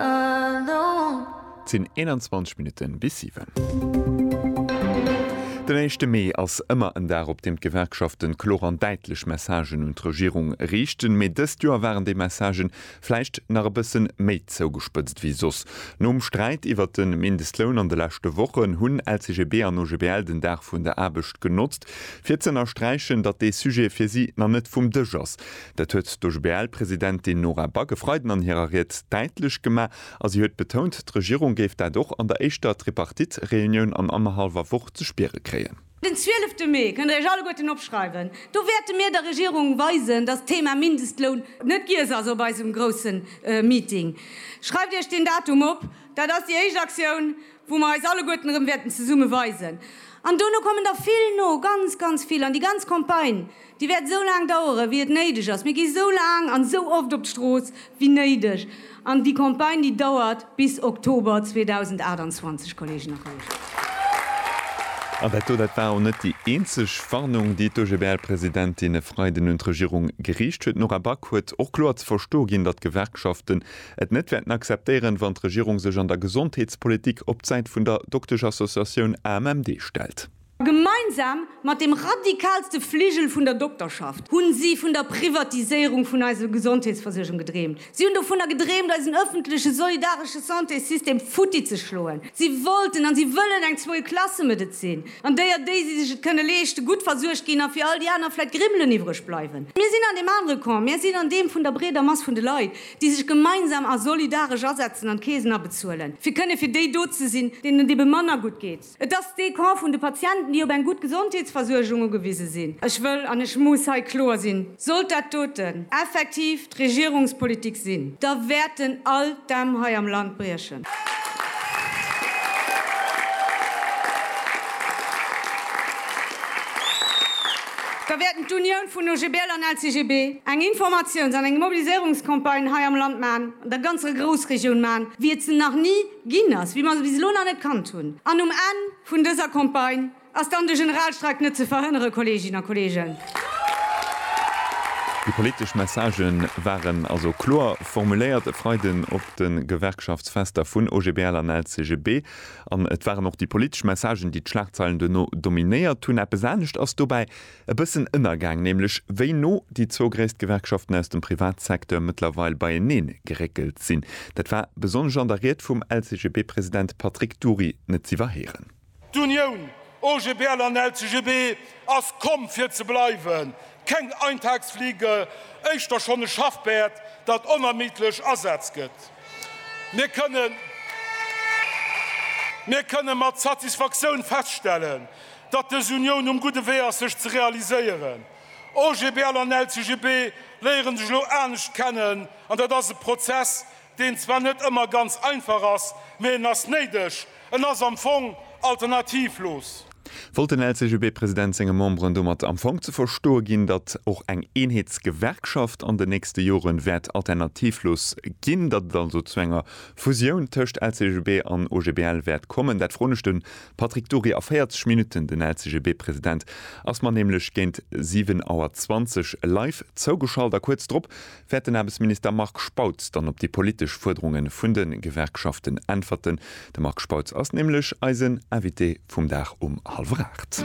Et sinn 21 Minutte bis 7. Den éischte Mee ass ëmmer en Dag, op deem d'Gewerkschaften kloer an däitlech Messagen un d'Regierung riichten. Mee dëst Joer waren déi Messagen vläicht nach e bësse méi zougespëtzt wéi soss. Nom Sträit iwwert de Mindestloun an de leschte Wochen hunn LCGB an OGBL den Dag vun der Aarbecht genotzt, fir z'ënnersträichen, datt dee Sujet fir si nach net vum Dësch ass. Dat huet d'OGBL-Presidentin Nora Back e Freiden an hirer Ried däitlech gemaach a si huet betount, d'Regierung géif dat och an der éischter Tripartite-Reunioun an annerhallwer Woch ze spiere kréien. Den 12 de Mee, kënnt der iech alleguerten opschreiwen, do wäerte mir der Regierung weisen, datt d'Thema Mindestloun net giess ass op eisem grousse Meeting. Schreift iech deen Datum op, dat ass déi éischt Aktioun, wou mer eis alleguerten erëm wäerten zesumme weisen. An dono kommen der vill no, ganz, ganz vill, an déi ganz Campagne. Déi wäert esou laang dauere wéi et néideg ass. Mir gi esou laang an esou oft op d'Strooss wéi néideg. An déi Campagne déi dauert bis Oktober 2028, Kolleegen a Kolleegen. An dat do, dat war och net déi eenzeg Warnung, déi d'OGBL-Presidentin e Freiden un d'Regierung geriicht huet. D'Nora Back huet och kloer ze verstoe ginn, datt d'Gewerkschaften et net wäerten akzeptéieren, wann d'Regierung sech an der Gesondheetspolitik op d'Säit vun der Doktesch-Associatioun AMMD stellt. Gemeinsam mat dem radikalste Fligel vun der Dokterschaft hunn si vun der Privatiséierung vun eiser Gesondheetsversuergung gedreemt. Si hunn dovunner gedreemt, eisen ëffentleche solidaresche Santésystem futti ze schloen. Si wollten an si wëllen eng Zweiklasse-Medezin, an déier déi, si sech et kënne leeschten, gutt versuergt ginn a fir all déi aner vläit Grimmelen iwwreg bleiwen. Mir sinn an deem anere Camp. Mir sinn an deem vun der breeder Mass vun de Leit, déi sech gemeinsam a solidaresch asetzen an d'Keesen abezuelen, fir kënne fir déi do ze sinn, deenen et ebe manner gutt geet. Et ass dee Camp vun de Patienten, déi op eng gutt Gesondheetsversuergung ugewise sinn. Ech wëll an ech muss hei kloer sinn, Sollt dat doten effektiv d'Regierungspolitik sinn, da wäerten all d'Dämm hei am Land briechen. Da wäerten d'Unioun vun OGBL an LCGB eng Informatiouns an eng Mobiliséierungscampagne hei am Land maachen, an der ganzer Groussregioun maachen, wéi et se nach ni Ginn ass, wéi mer se bis elo nach net kannt hunn. An um Enn vun dëser Campagne ass dann de Generalstreik net ze verhënnere, Kolleeginnen a Kolleegen. Déi politesch Messagë waren also kloer formuléiert e Freiden op de Gewerkschaftsfester vun OGBL an LCGB. An et waren och déi politesch Messagen, déi d'Schlagzeilen duerno dominéiert hunn. Eppes anescht ass dobäi E bëssen ënnergaang, nämlech wéi no déi zwou gréisst Gewerkschaften aus dem Privatsecteur mëttlerweil beieneen geréckelt sinn. Dat war besonnesch an der Ried vum LCGB-President Patrick Dury net z'iwwerhéieren. D'Unioun, OGBL an LCGB, ass komm fir ze bleiwen. Keng Eintagsfliege, éischter schonn e Schaffpäerd, dat onermiddlech Asaz gëtt. Mir kënnen, mir kënnen mat Satisfaktioun feststellen, datt dës Unioun um gudde Wee ass sech ze realiséieren. OGBL an LCGB léiere sech elo anescht kennen an dat ass e Prozess, deen zwar net ëmmer ganz einfach ass, mee en ass néideg, en ass am Fong alternativlos. Wollt den LCGB-President senge Memberen domat am Fong ze verstoe ginn, datt och eng Eenheetsgewerkschaft an den nächste Jore wäert alternativlos ginn, datt et also zu enger Fusioun tëscht LCGB an OGBL wäert kommen? Dat froen ech de Patrick Dury, A 40 Minutten, den LCGB-President ass mer nämlech géint 7 Auer 20 live zougeschalt a kuerz drop wäert den Aarbechtsminister Marc Spautz dann op déi politesch Fuerderunge vun de Gewerkschaften äntwerten. De Marc Spautz ass nämlech eisen Invité vum Dag um hallwer 8.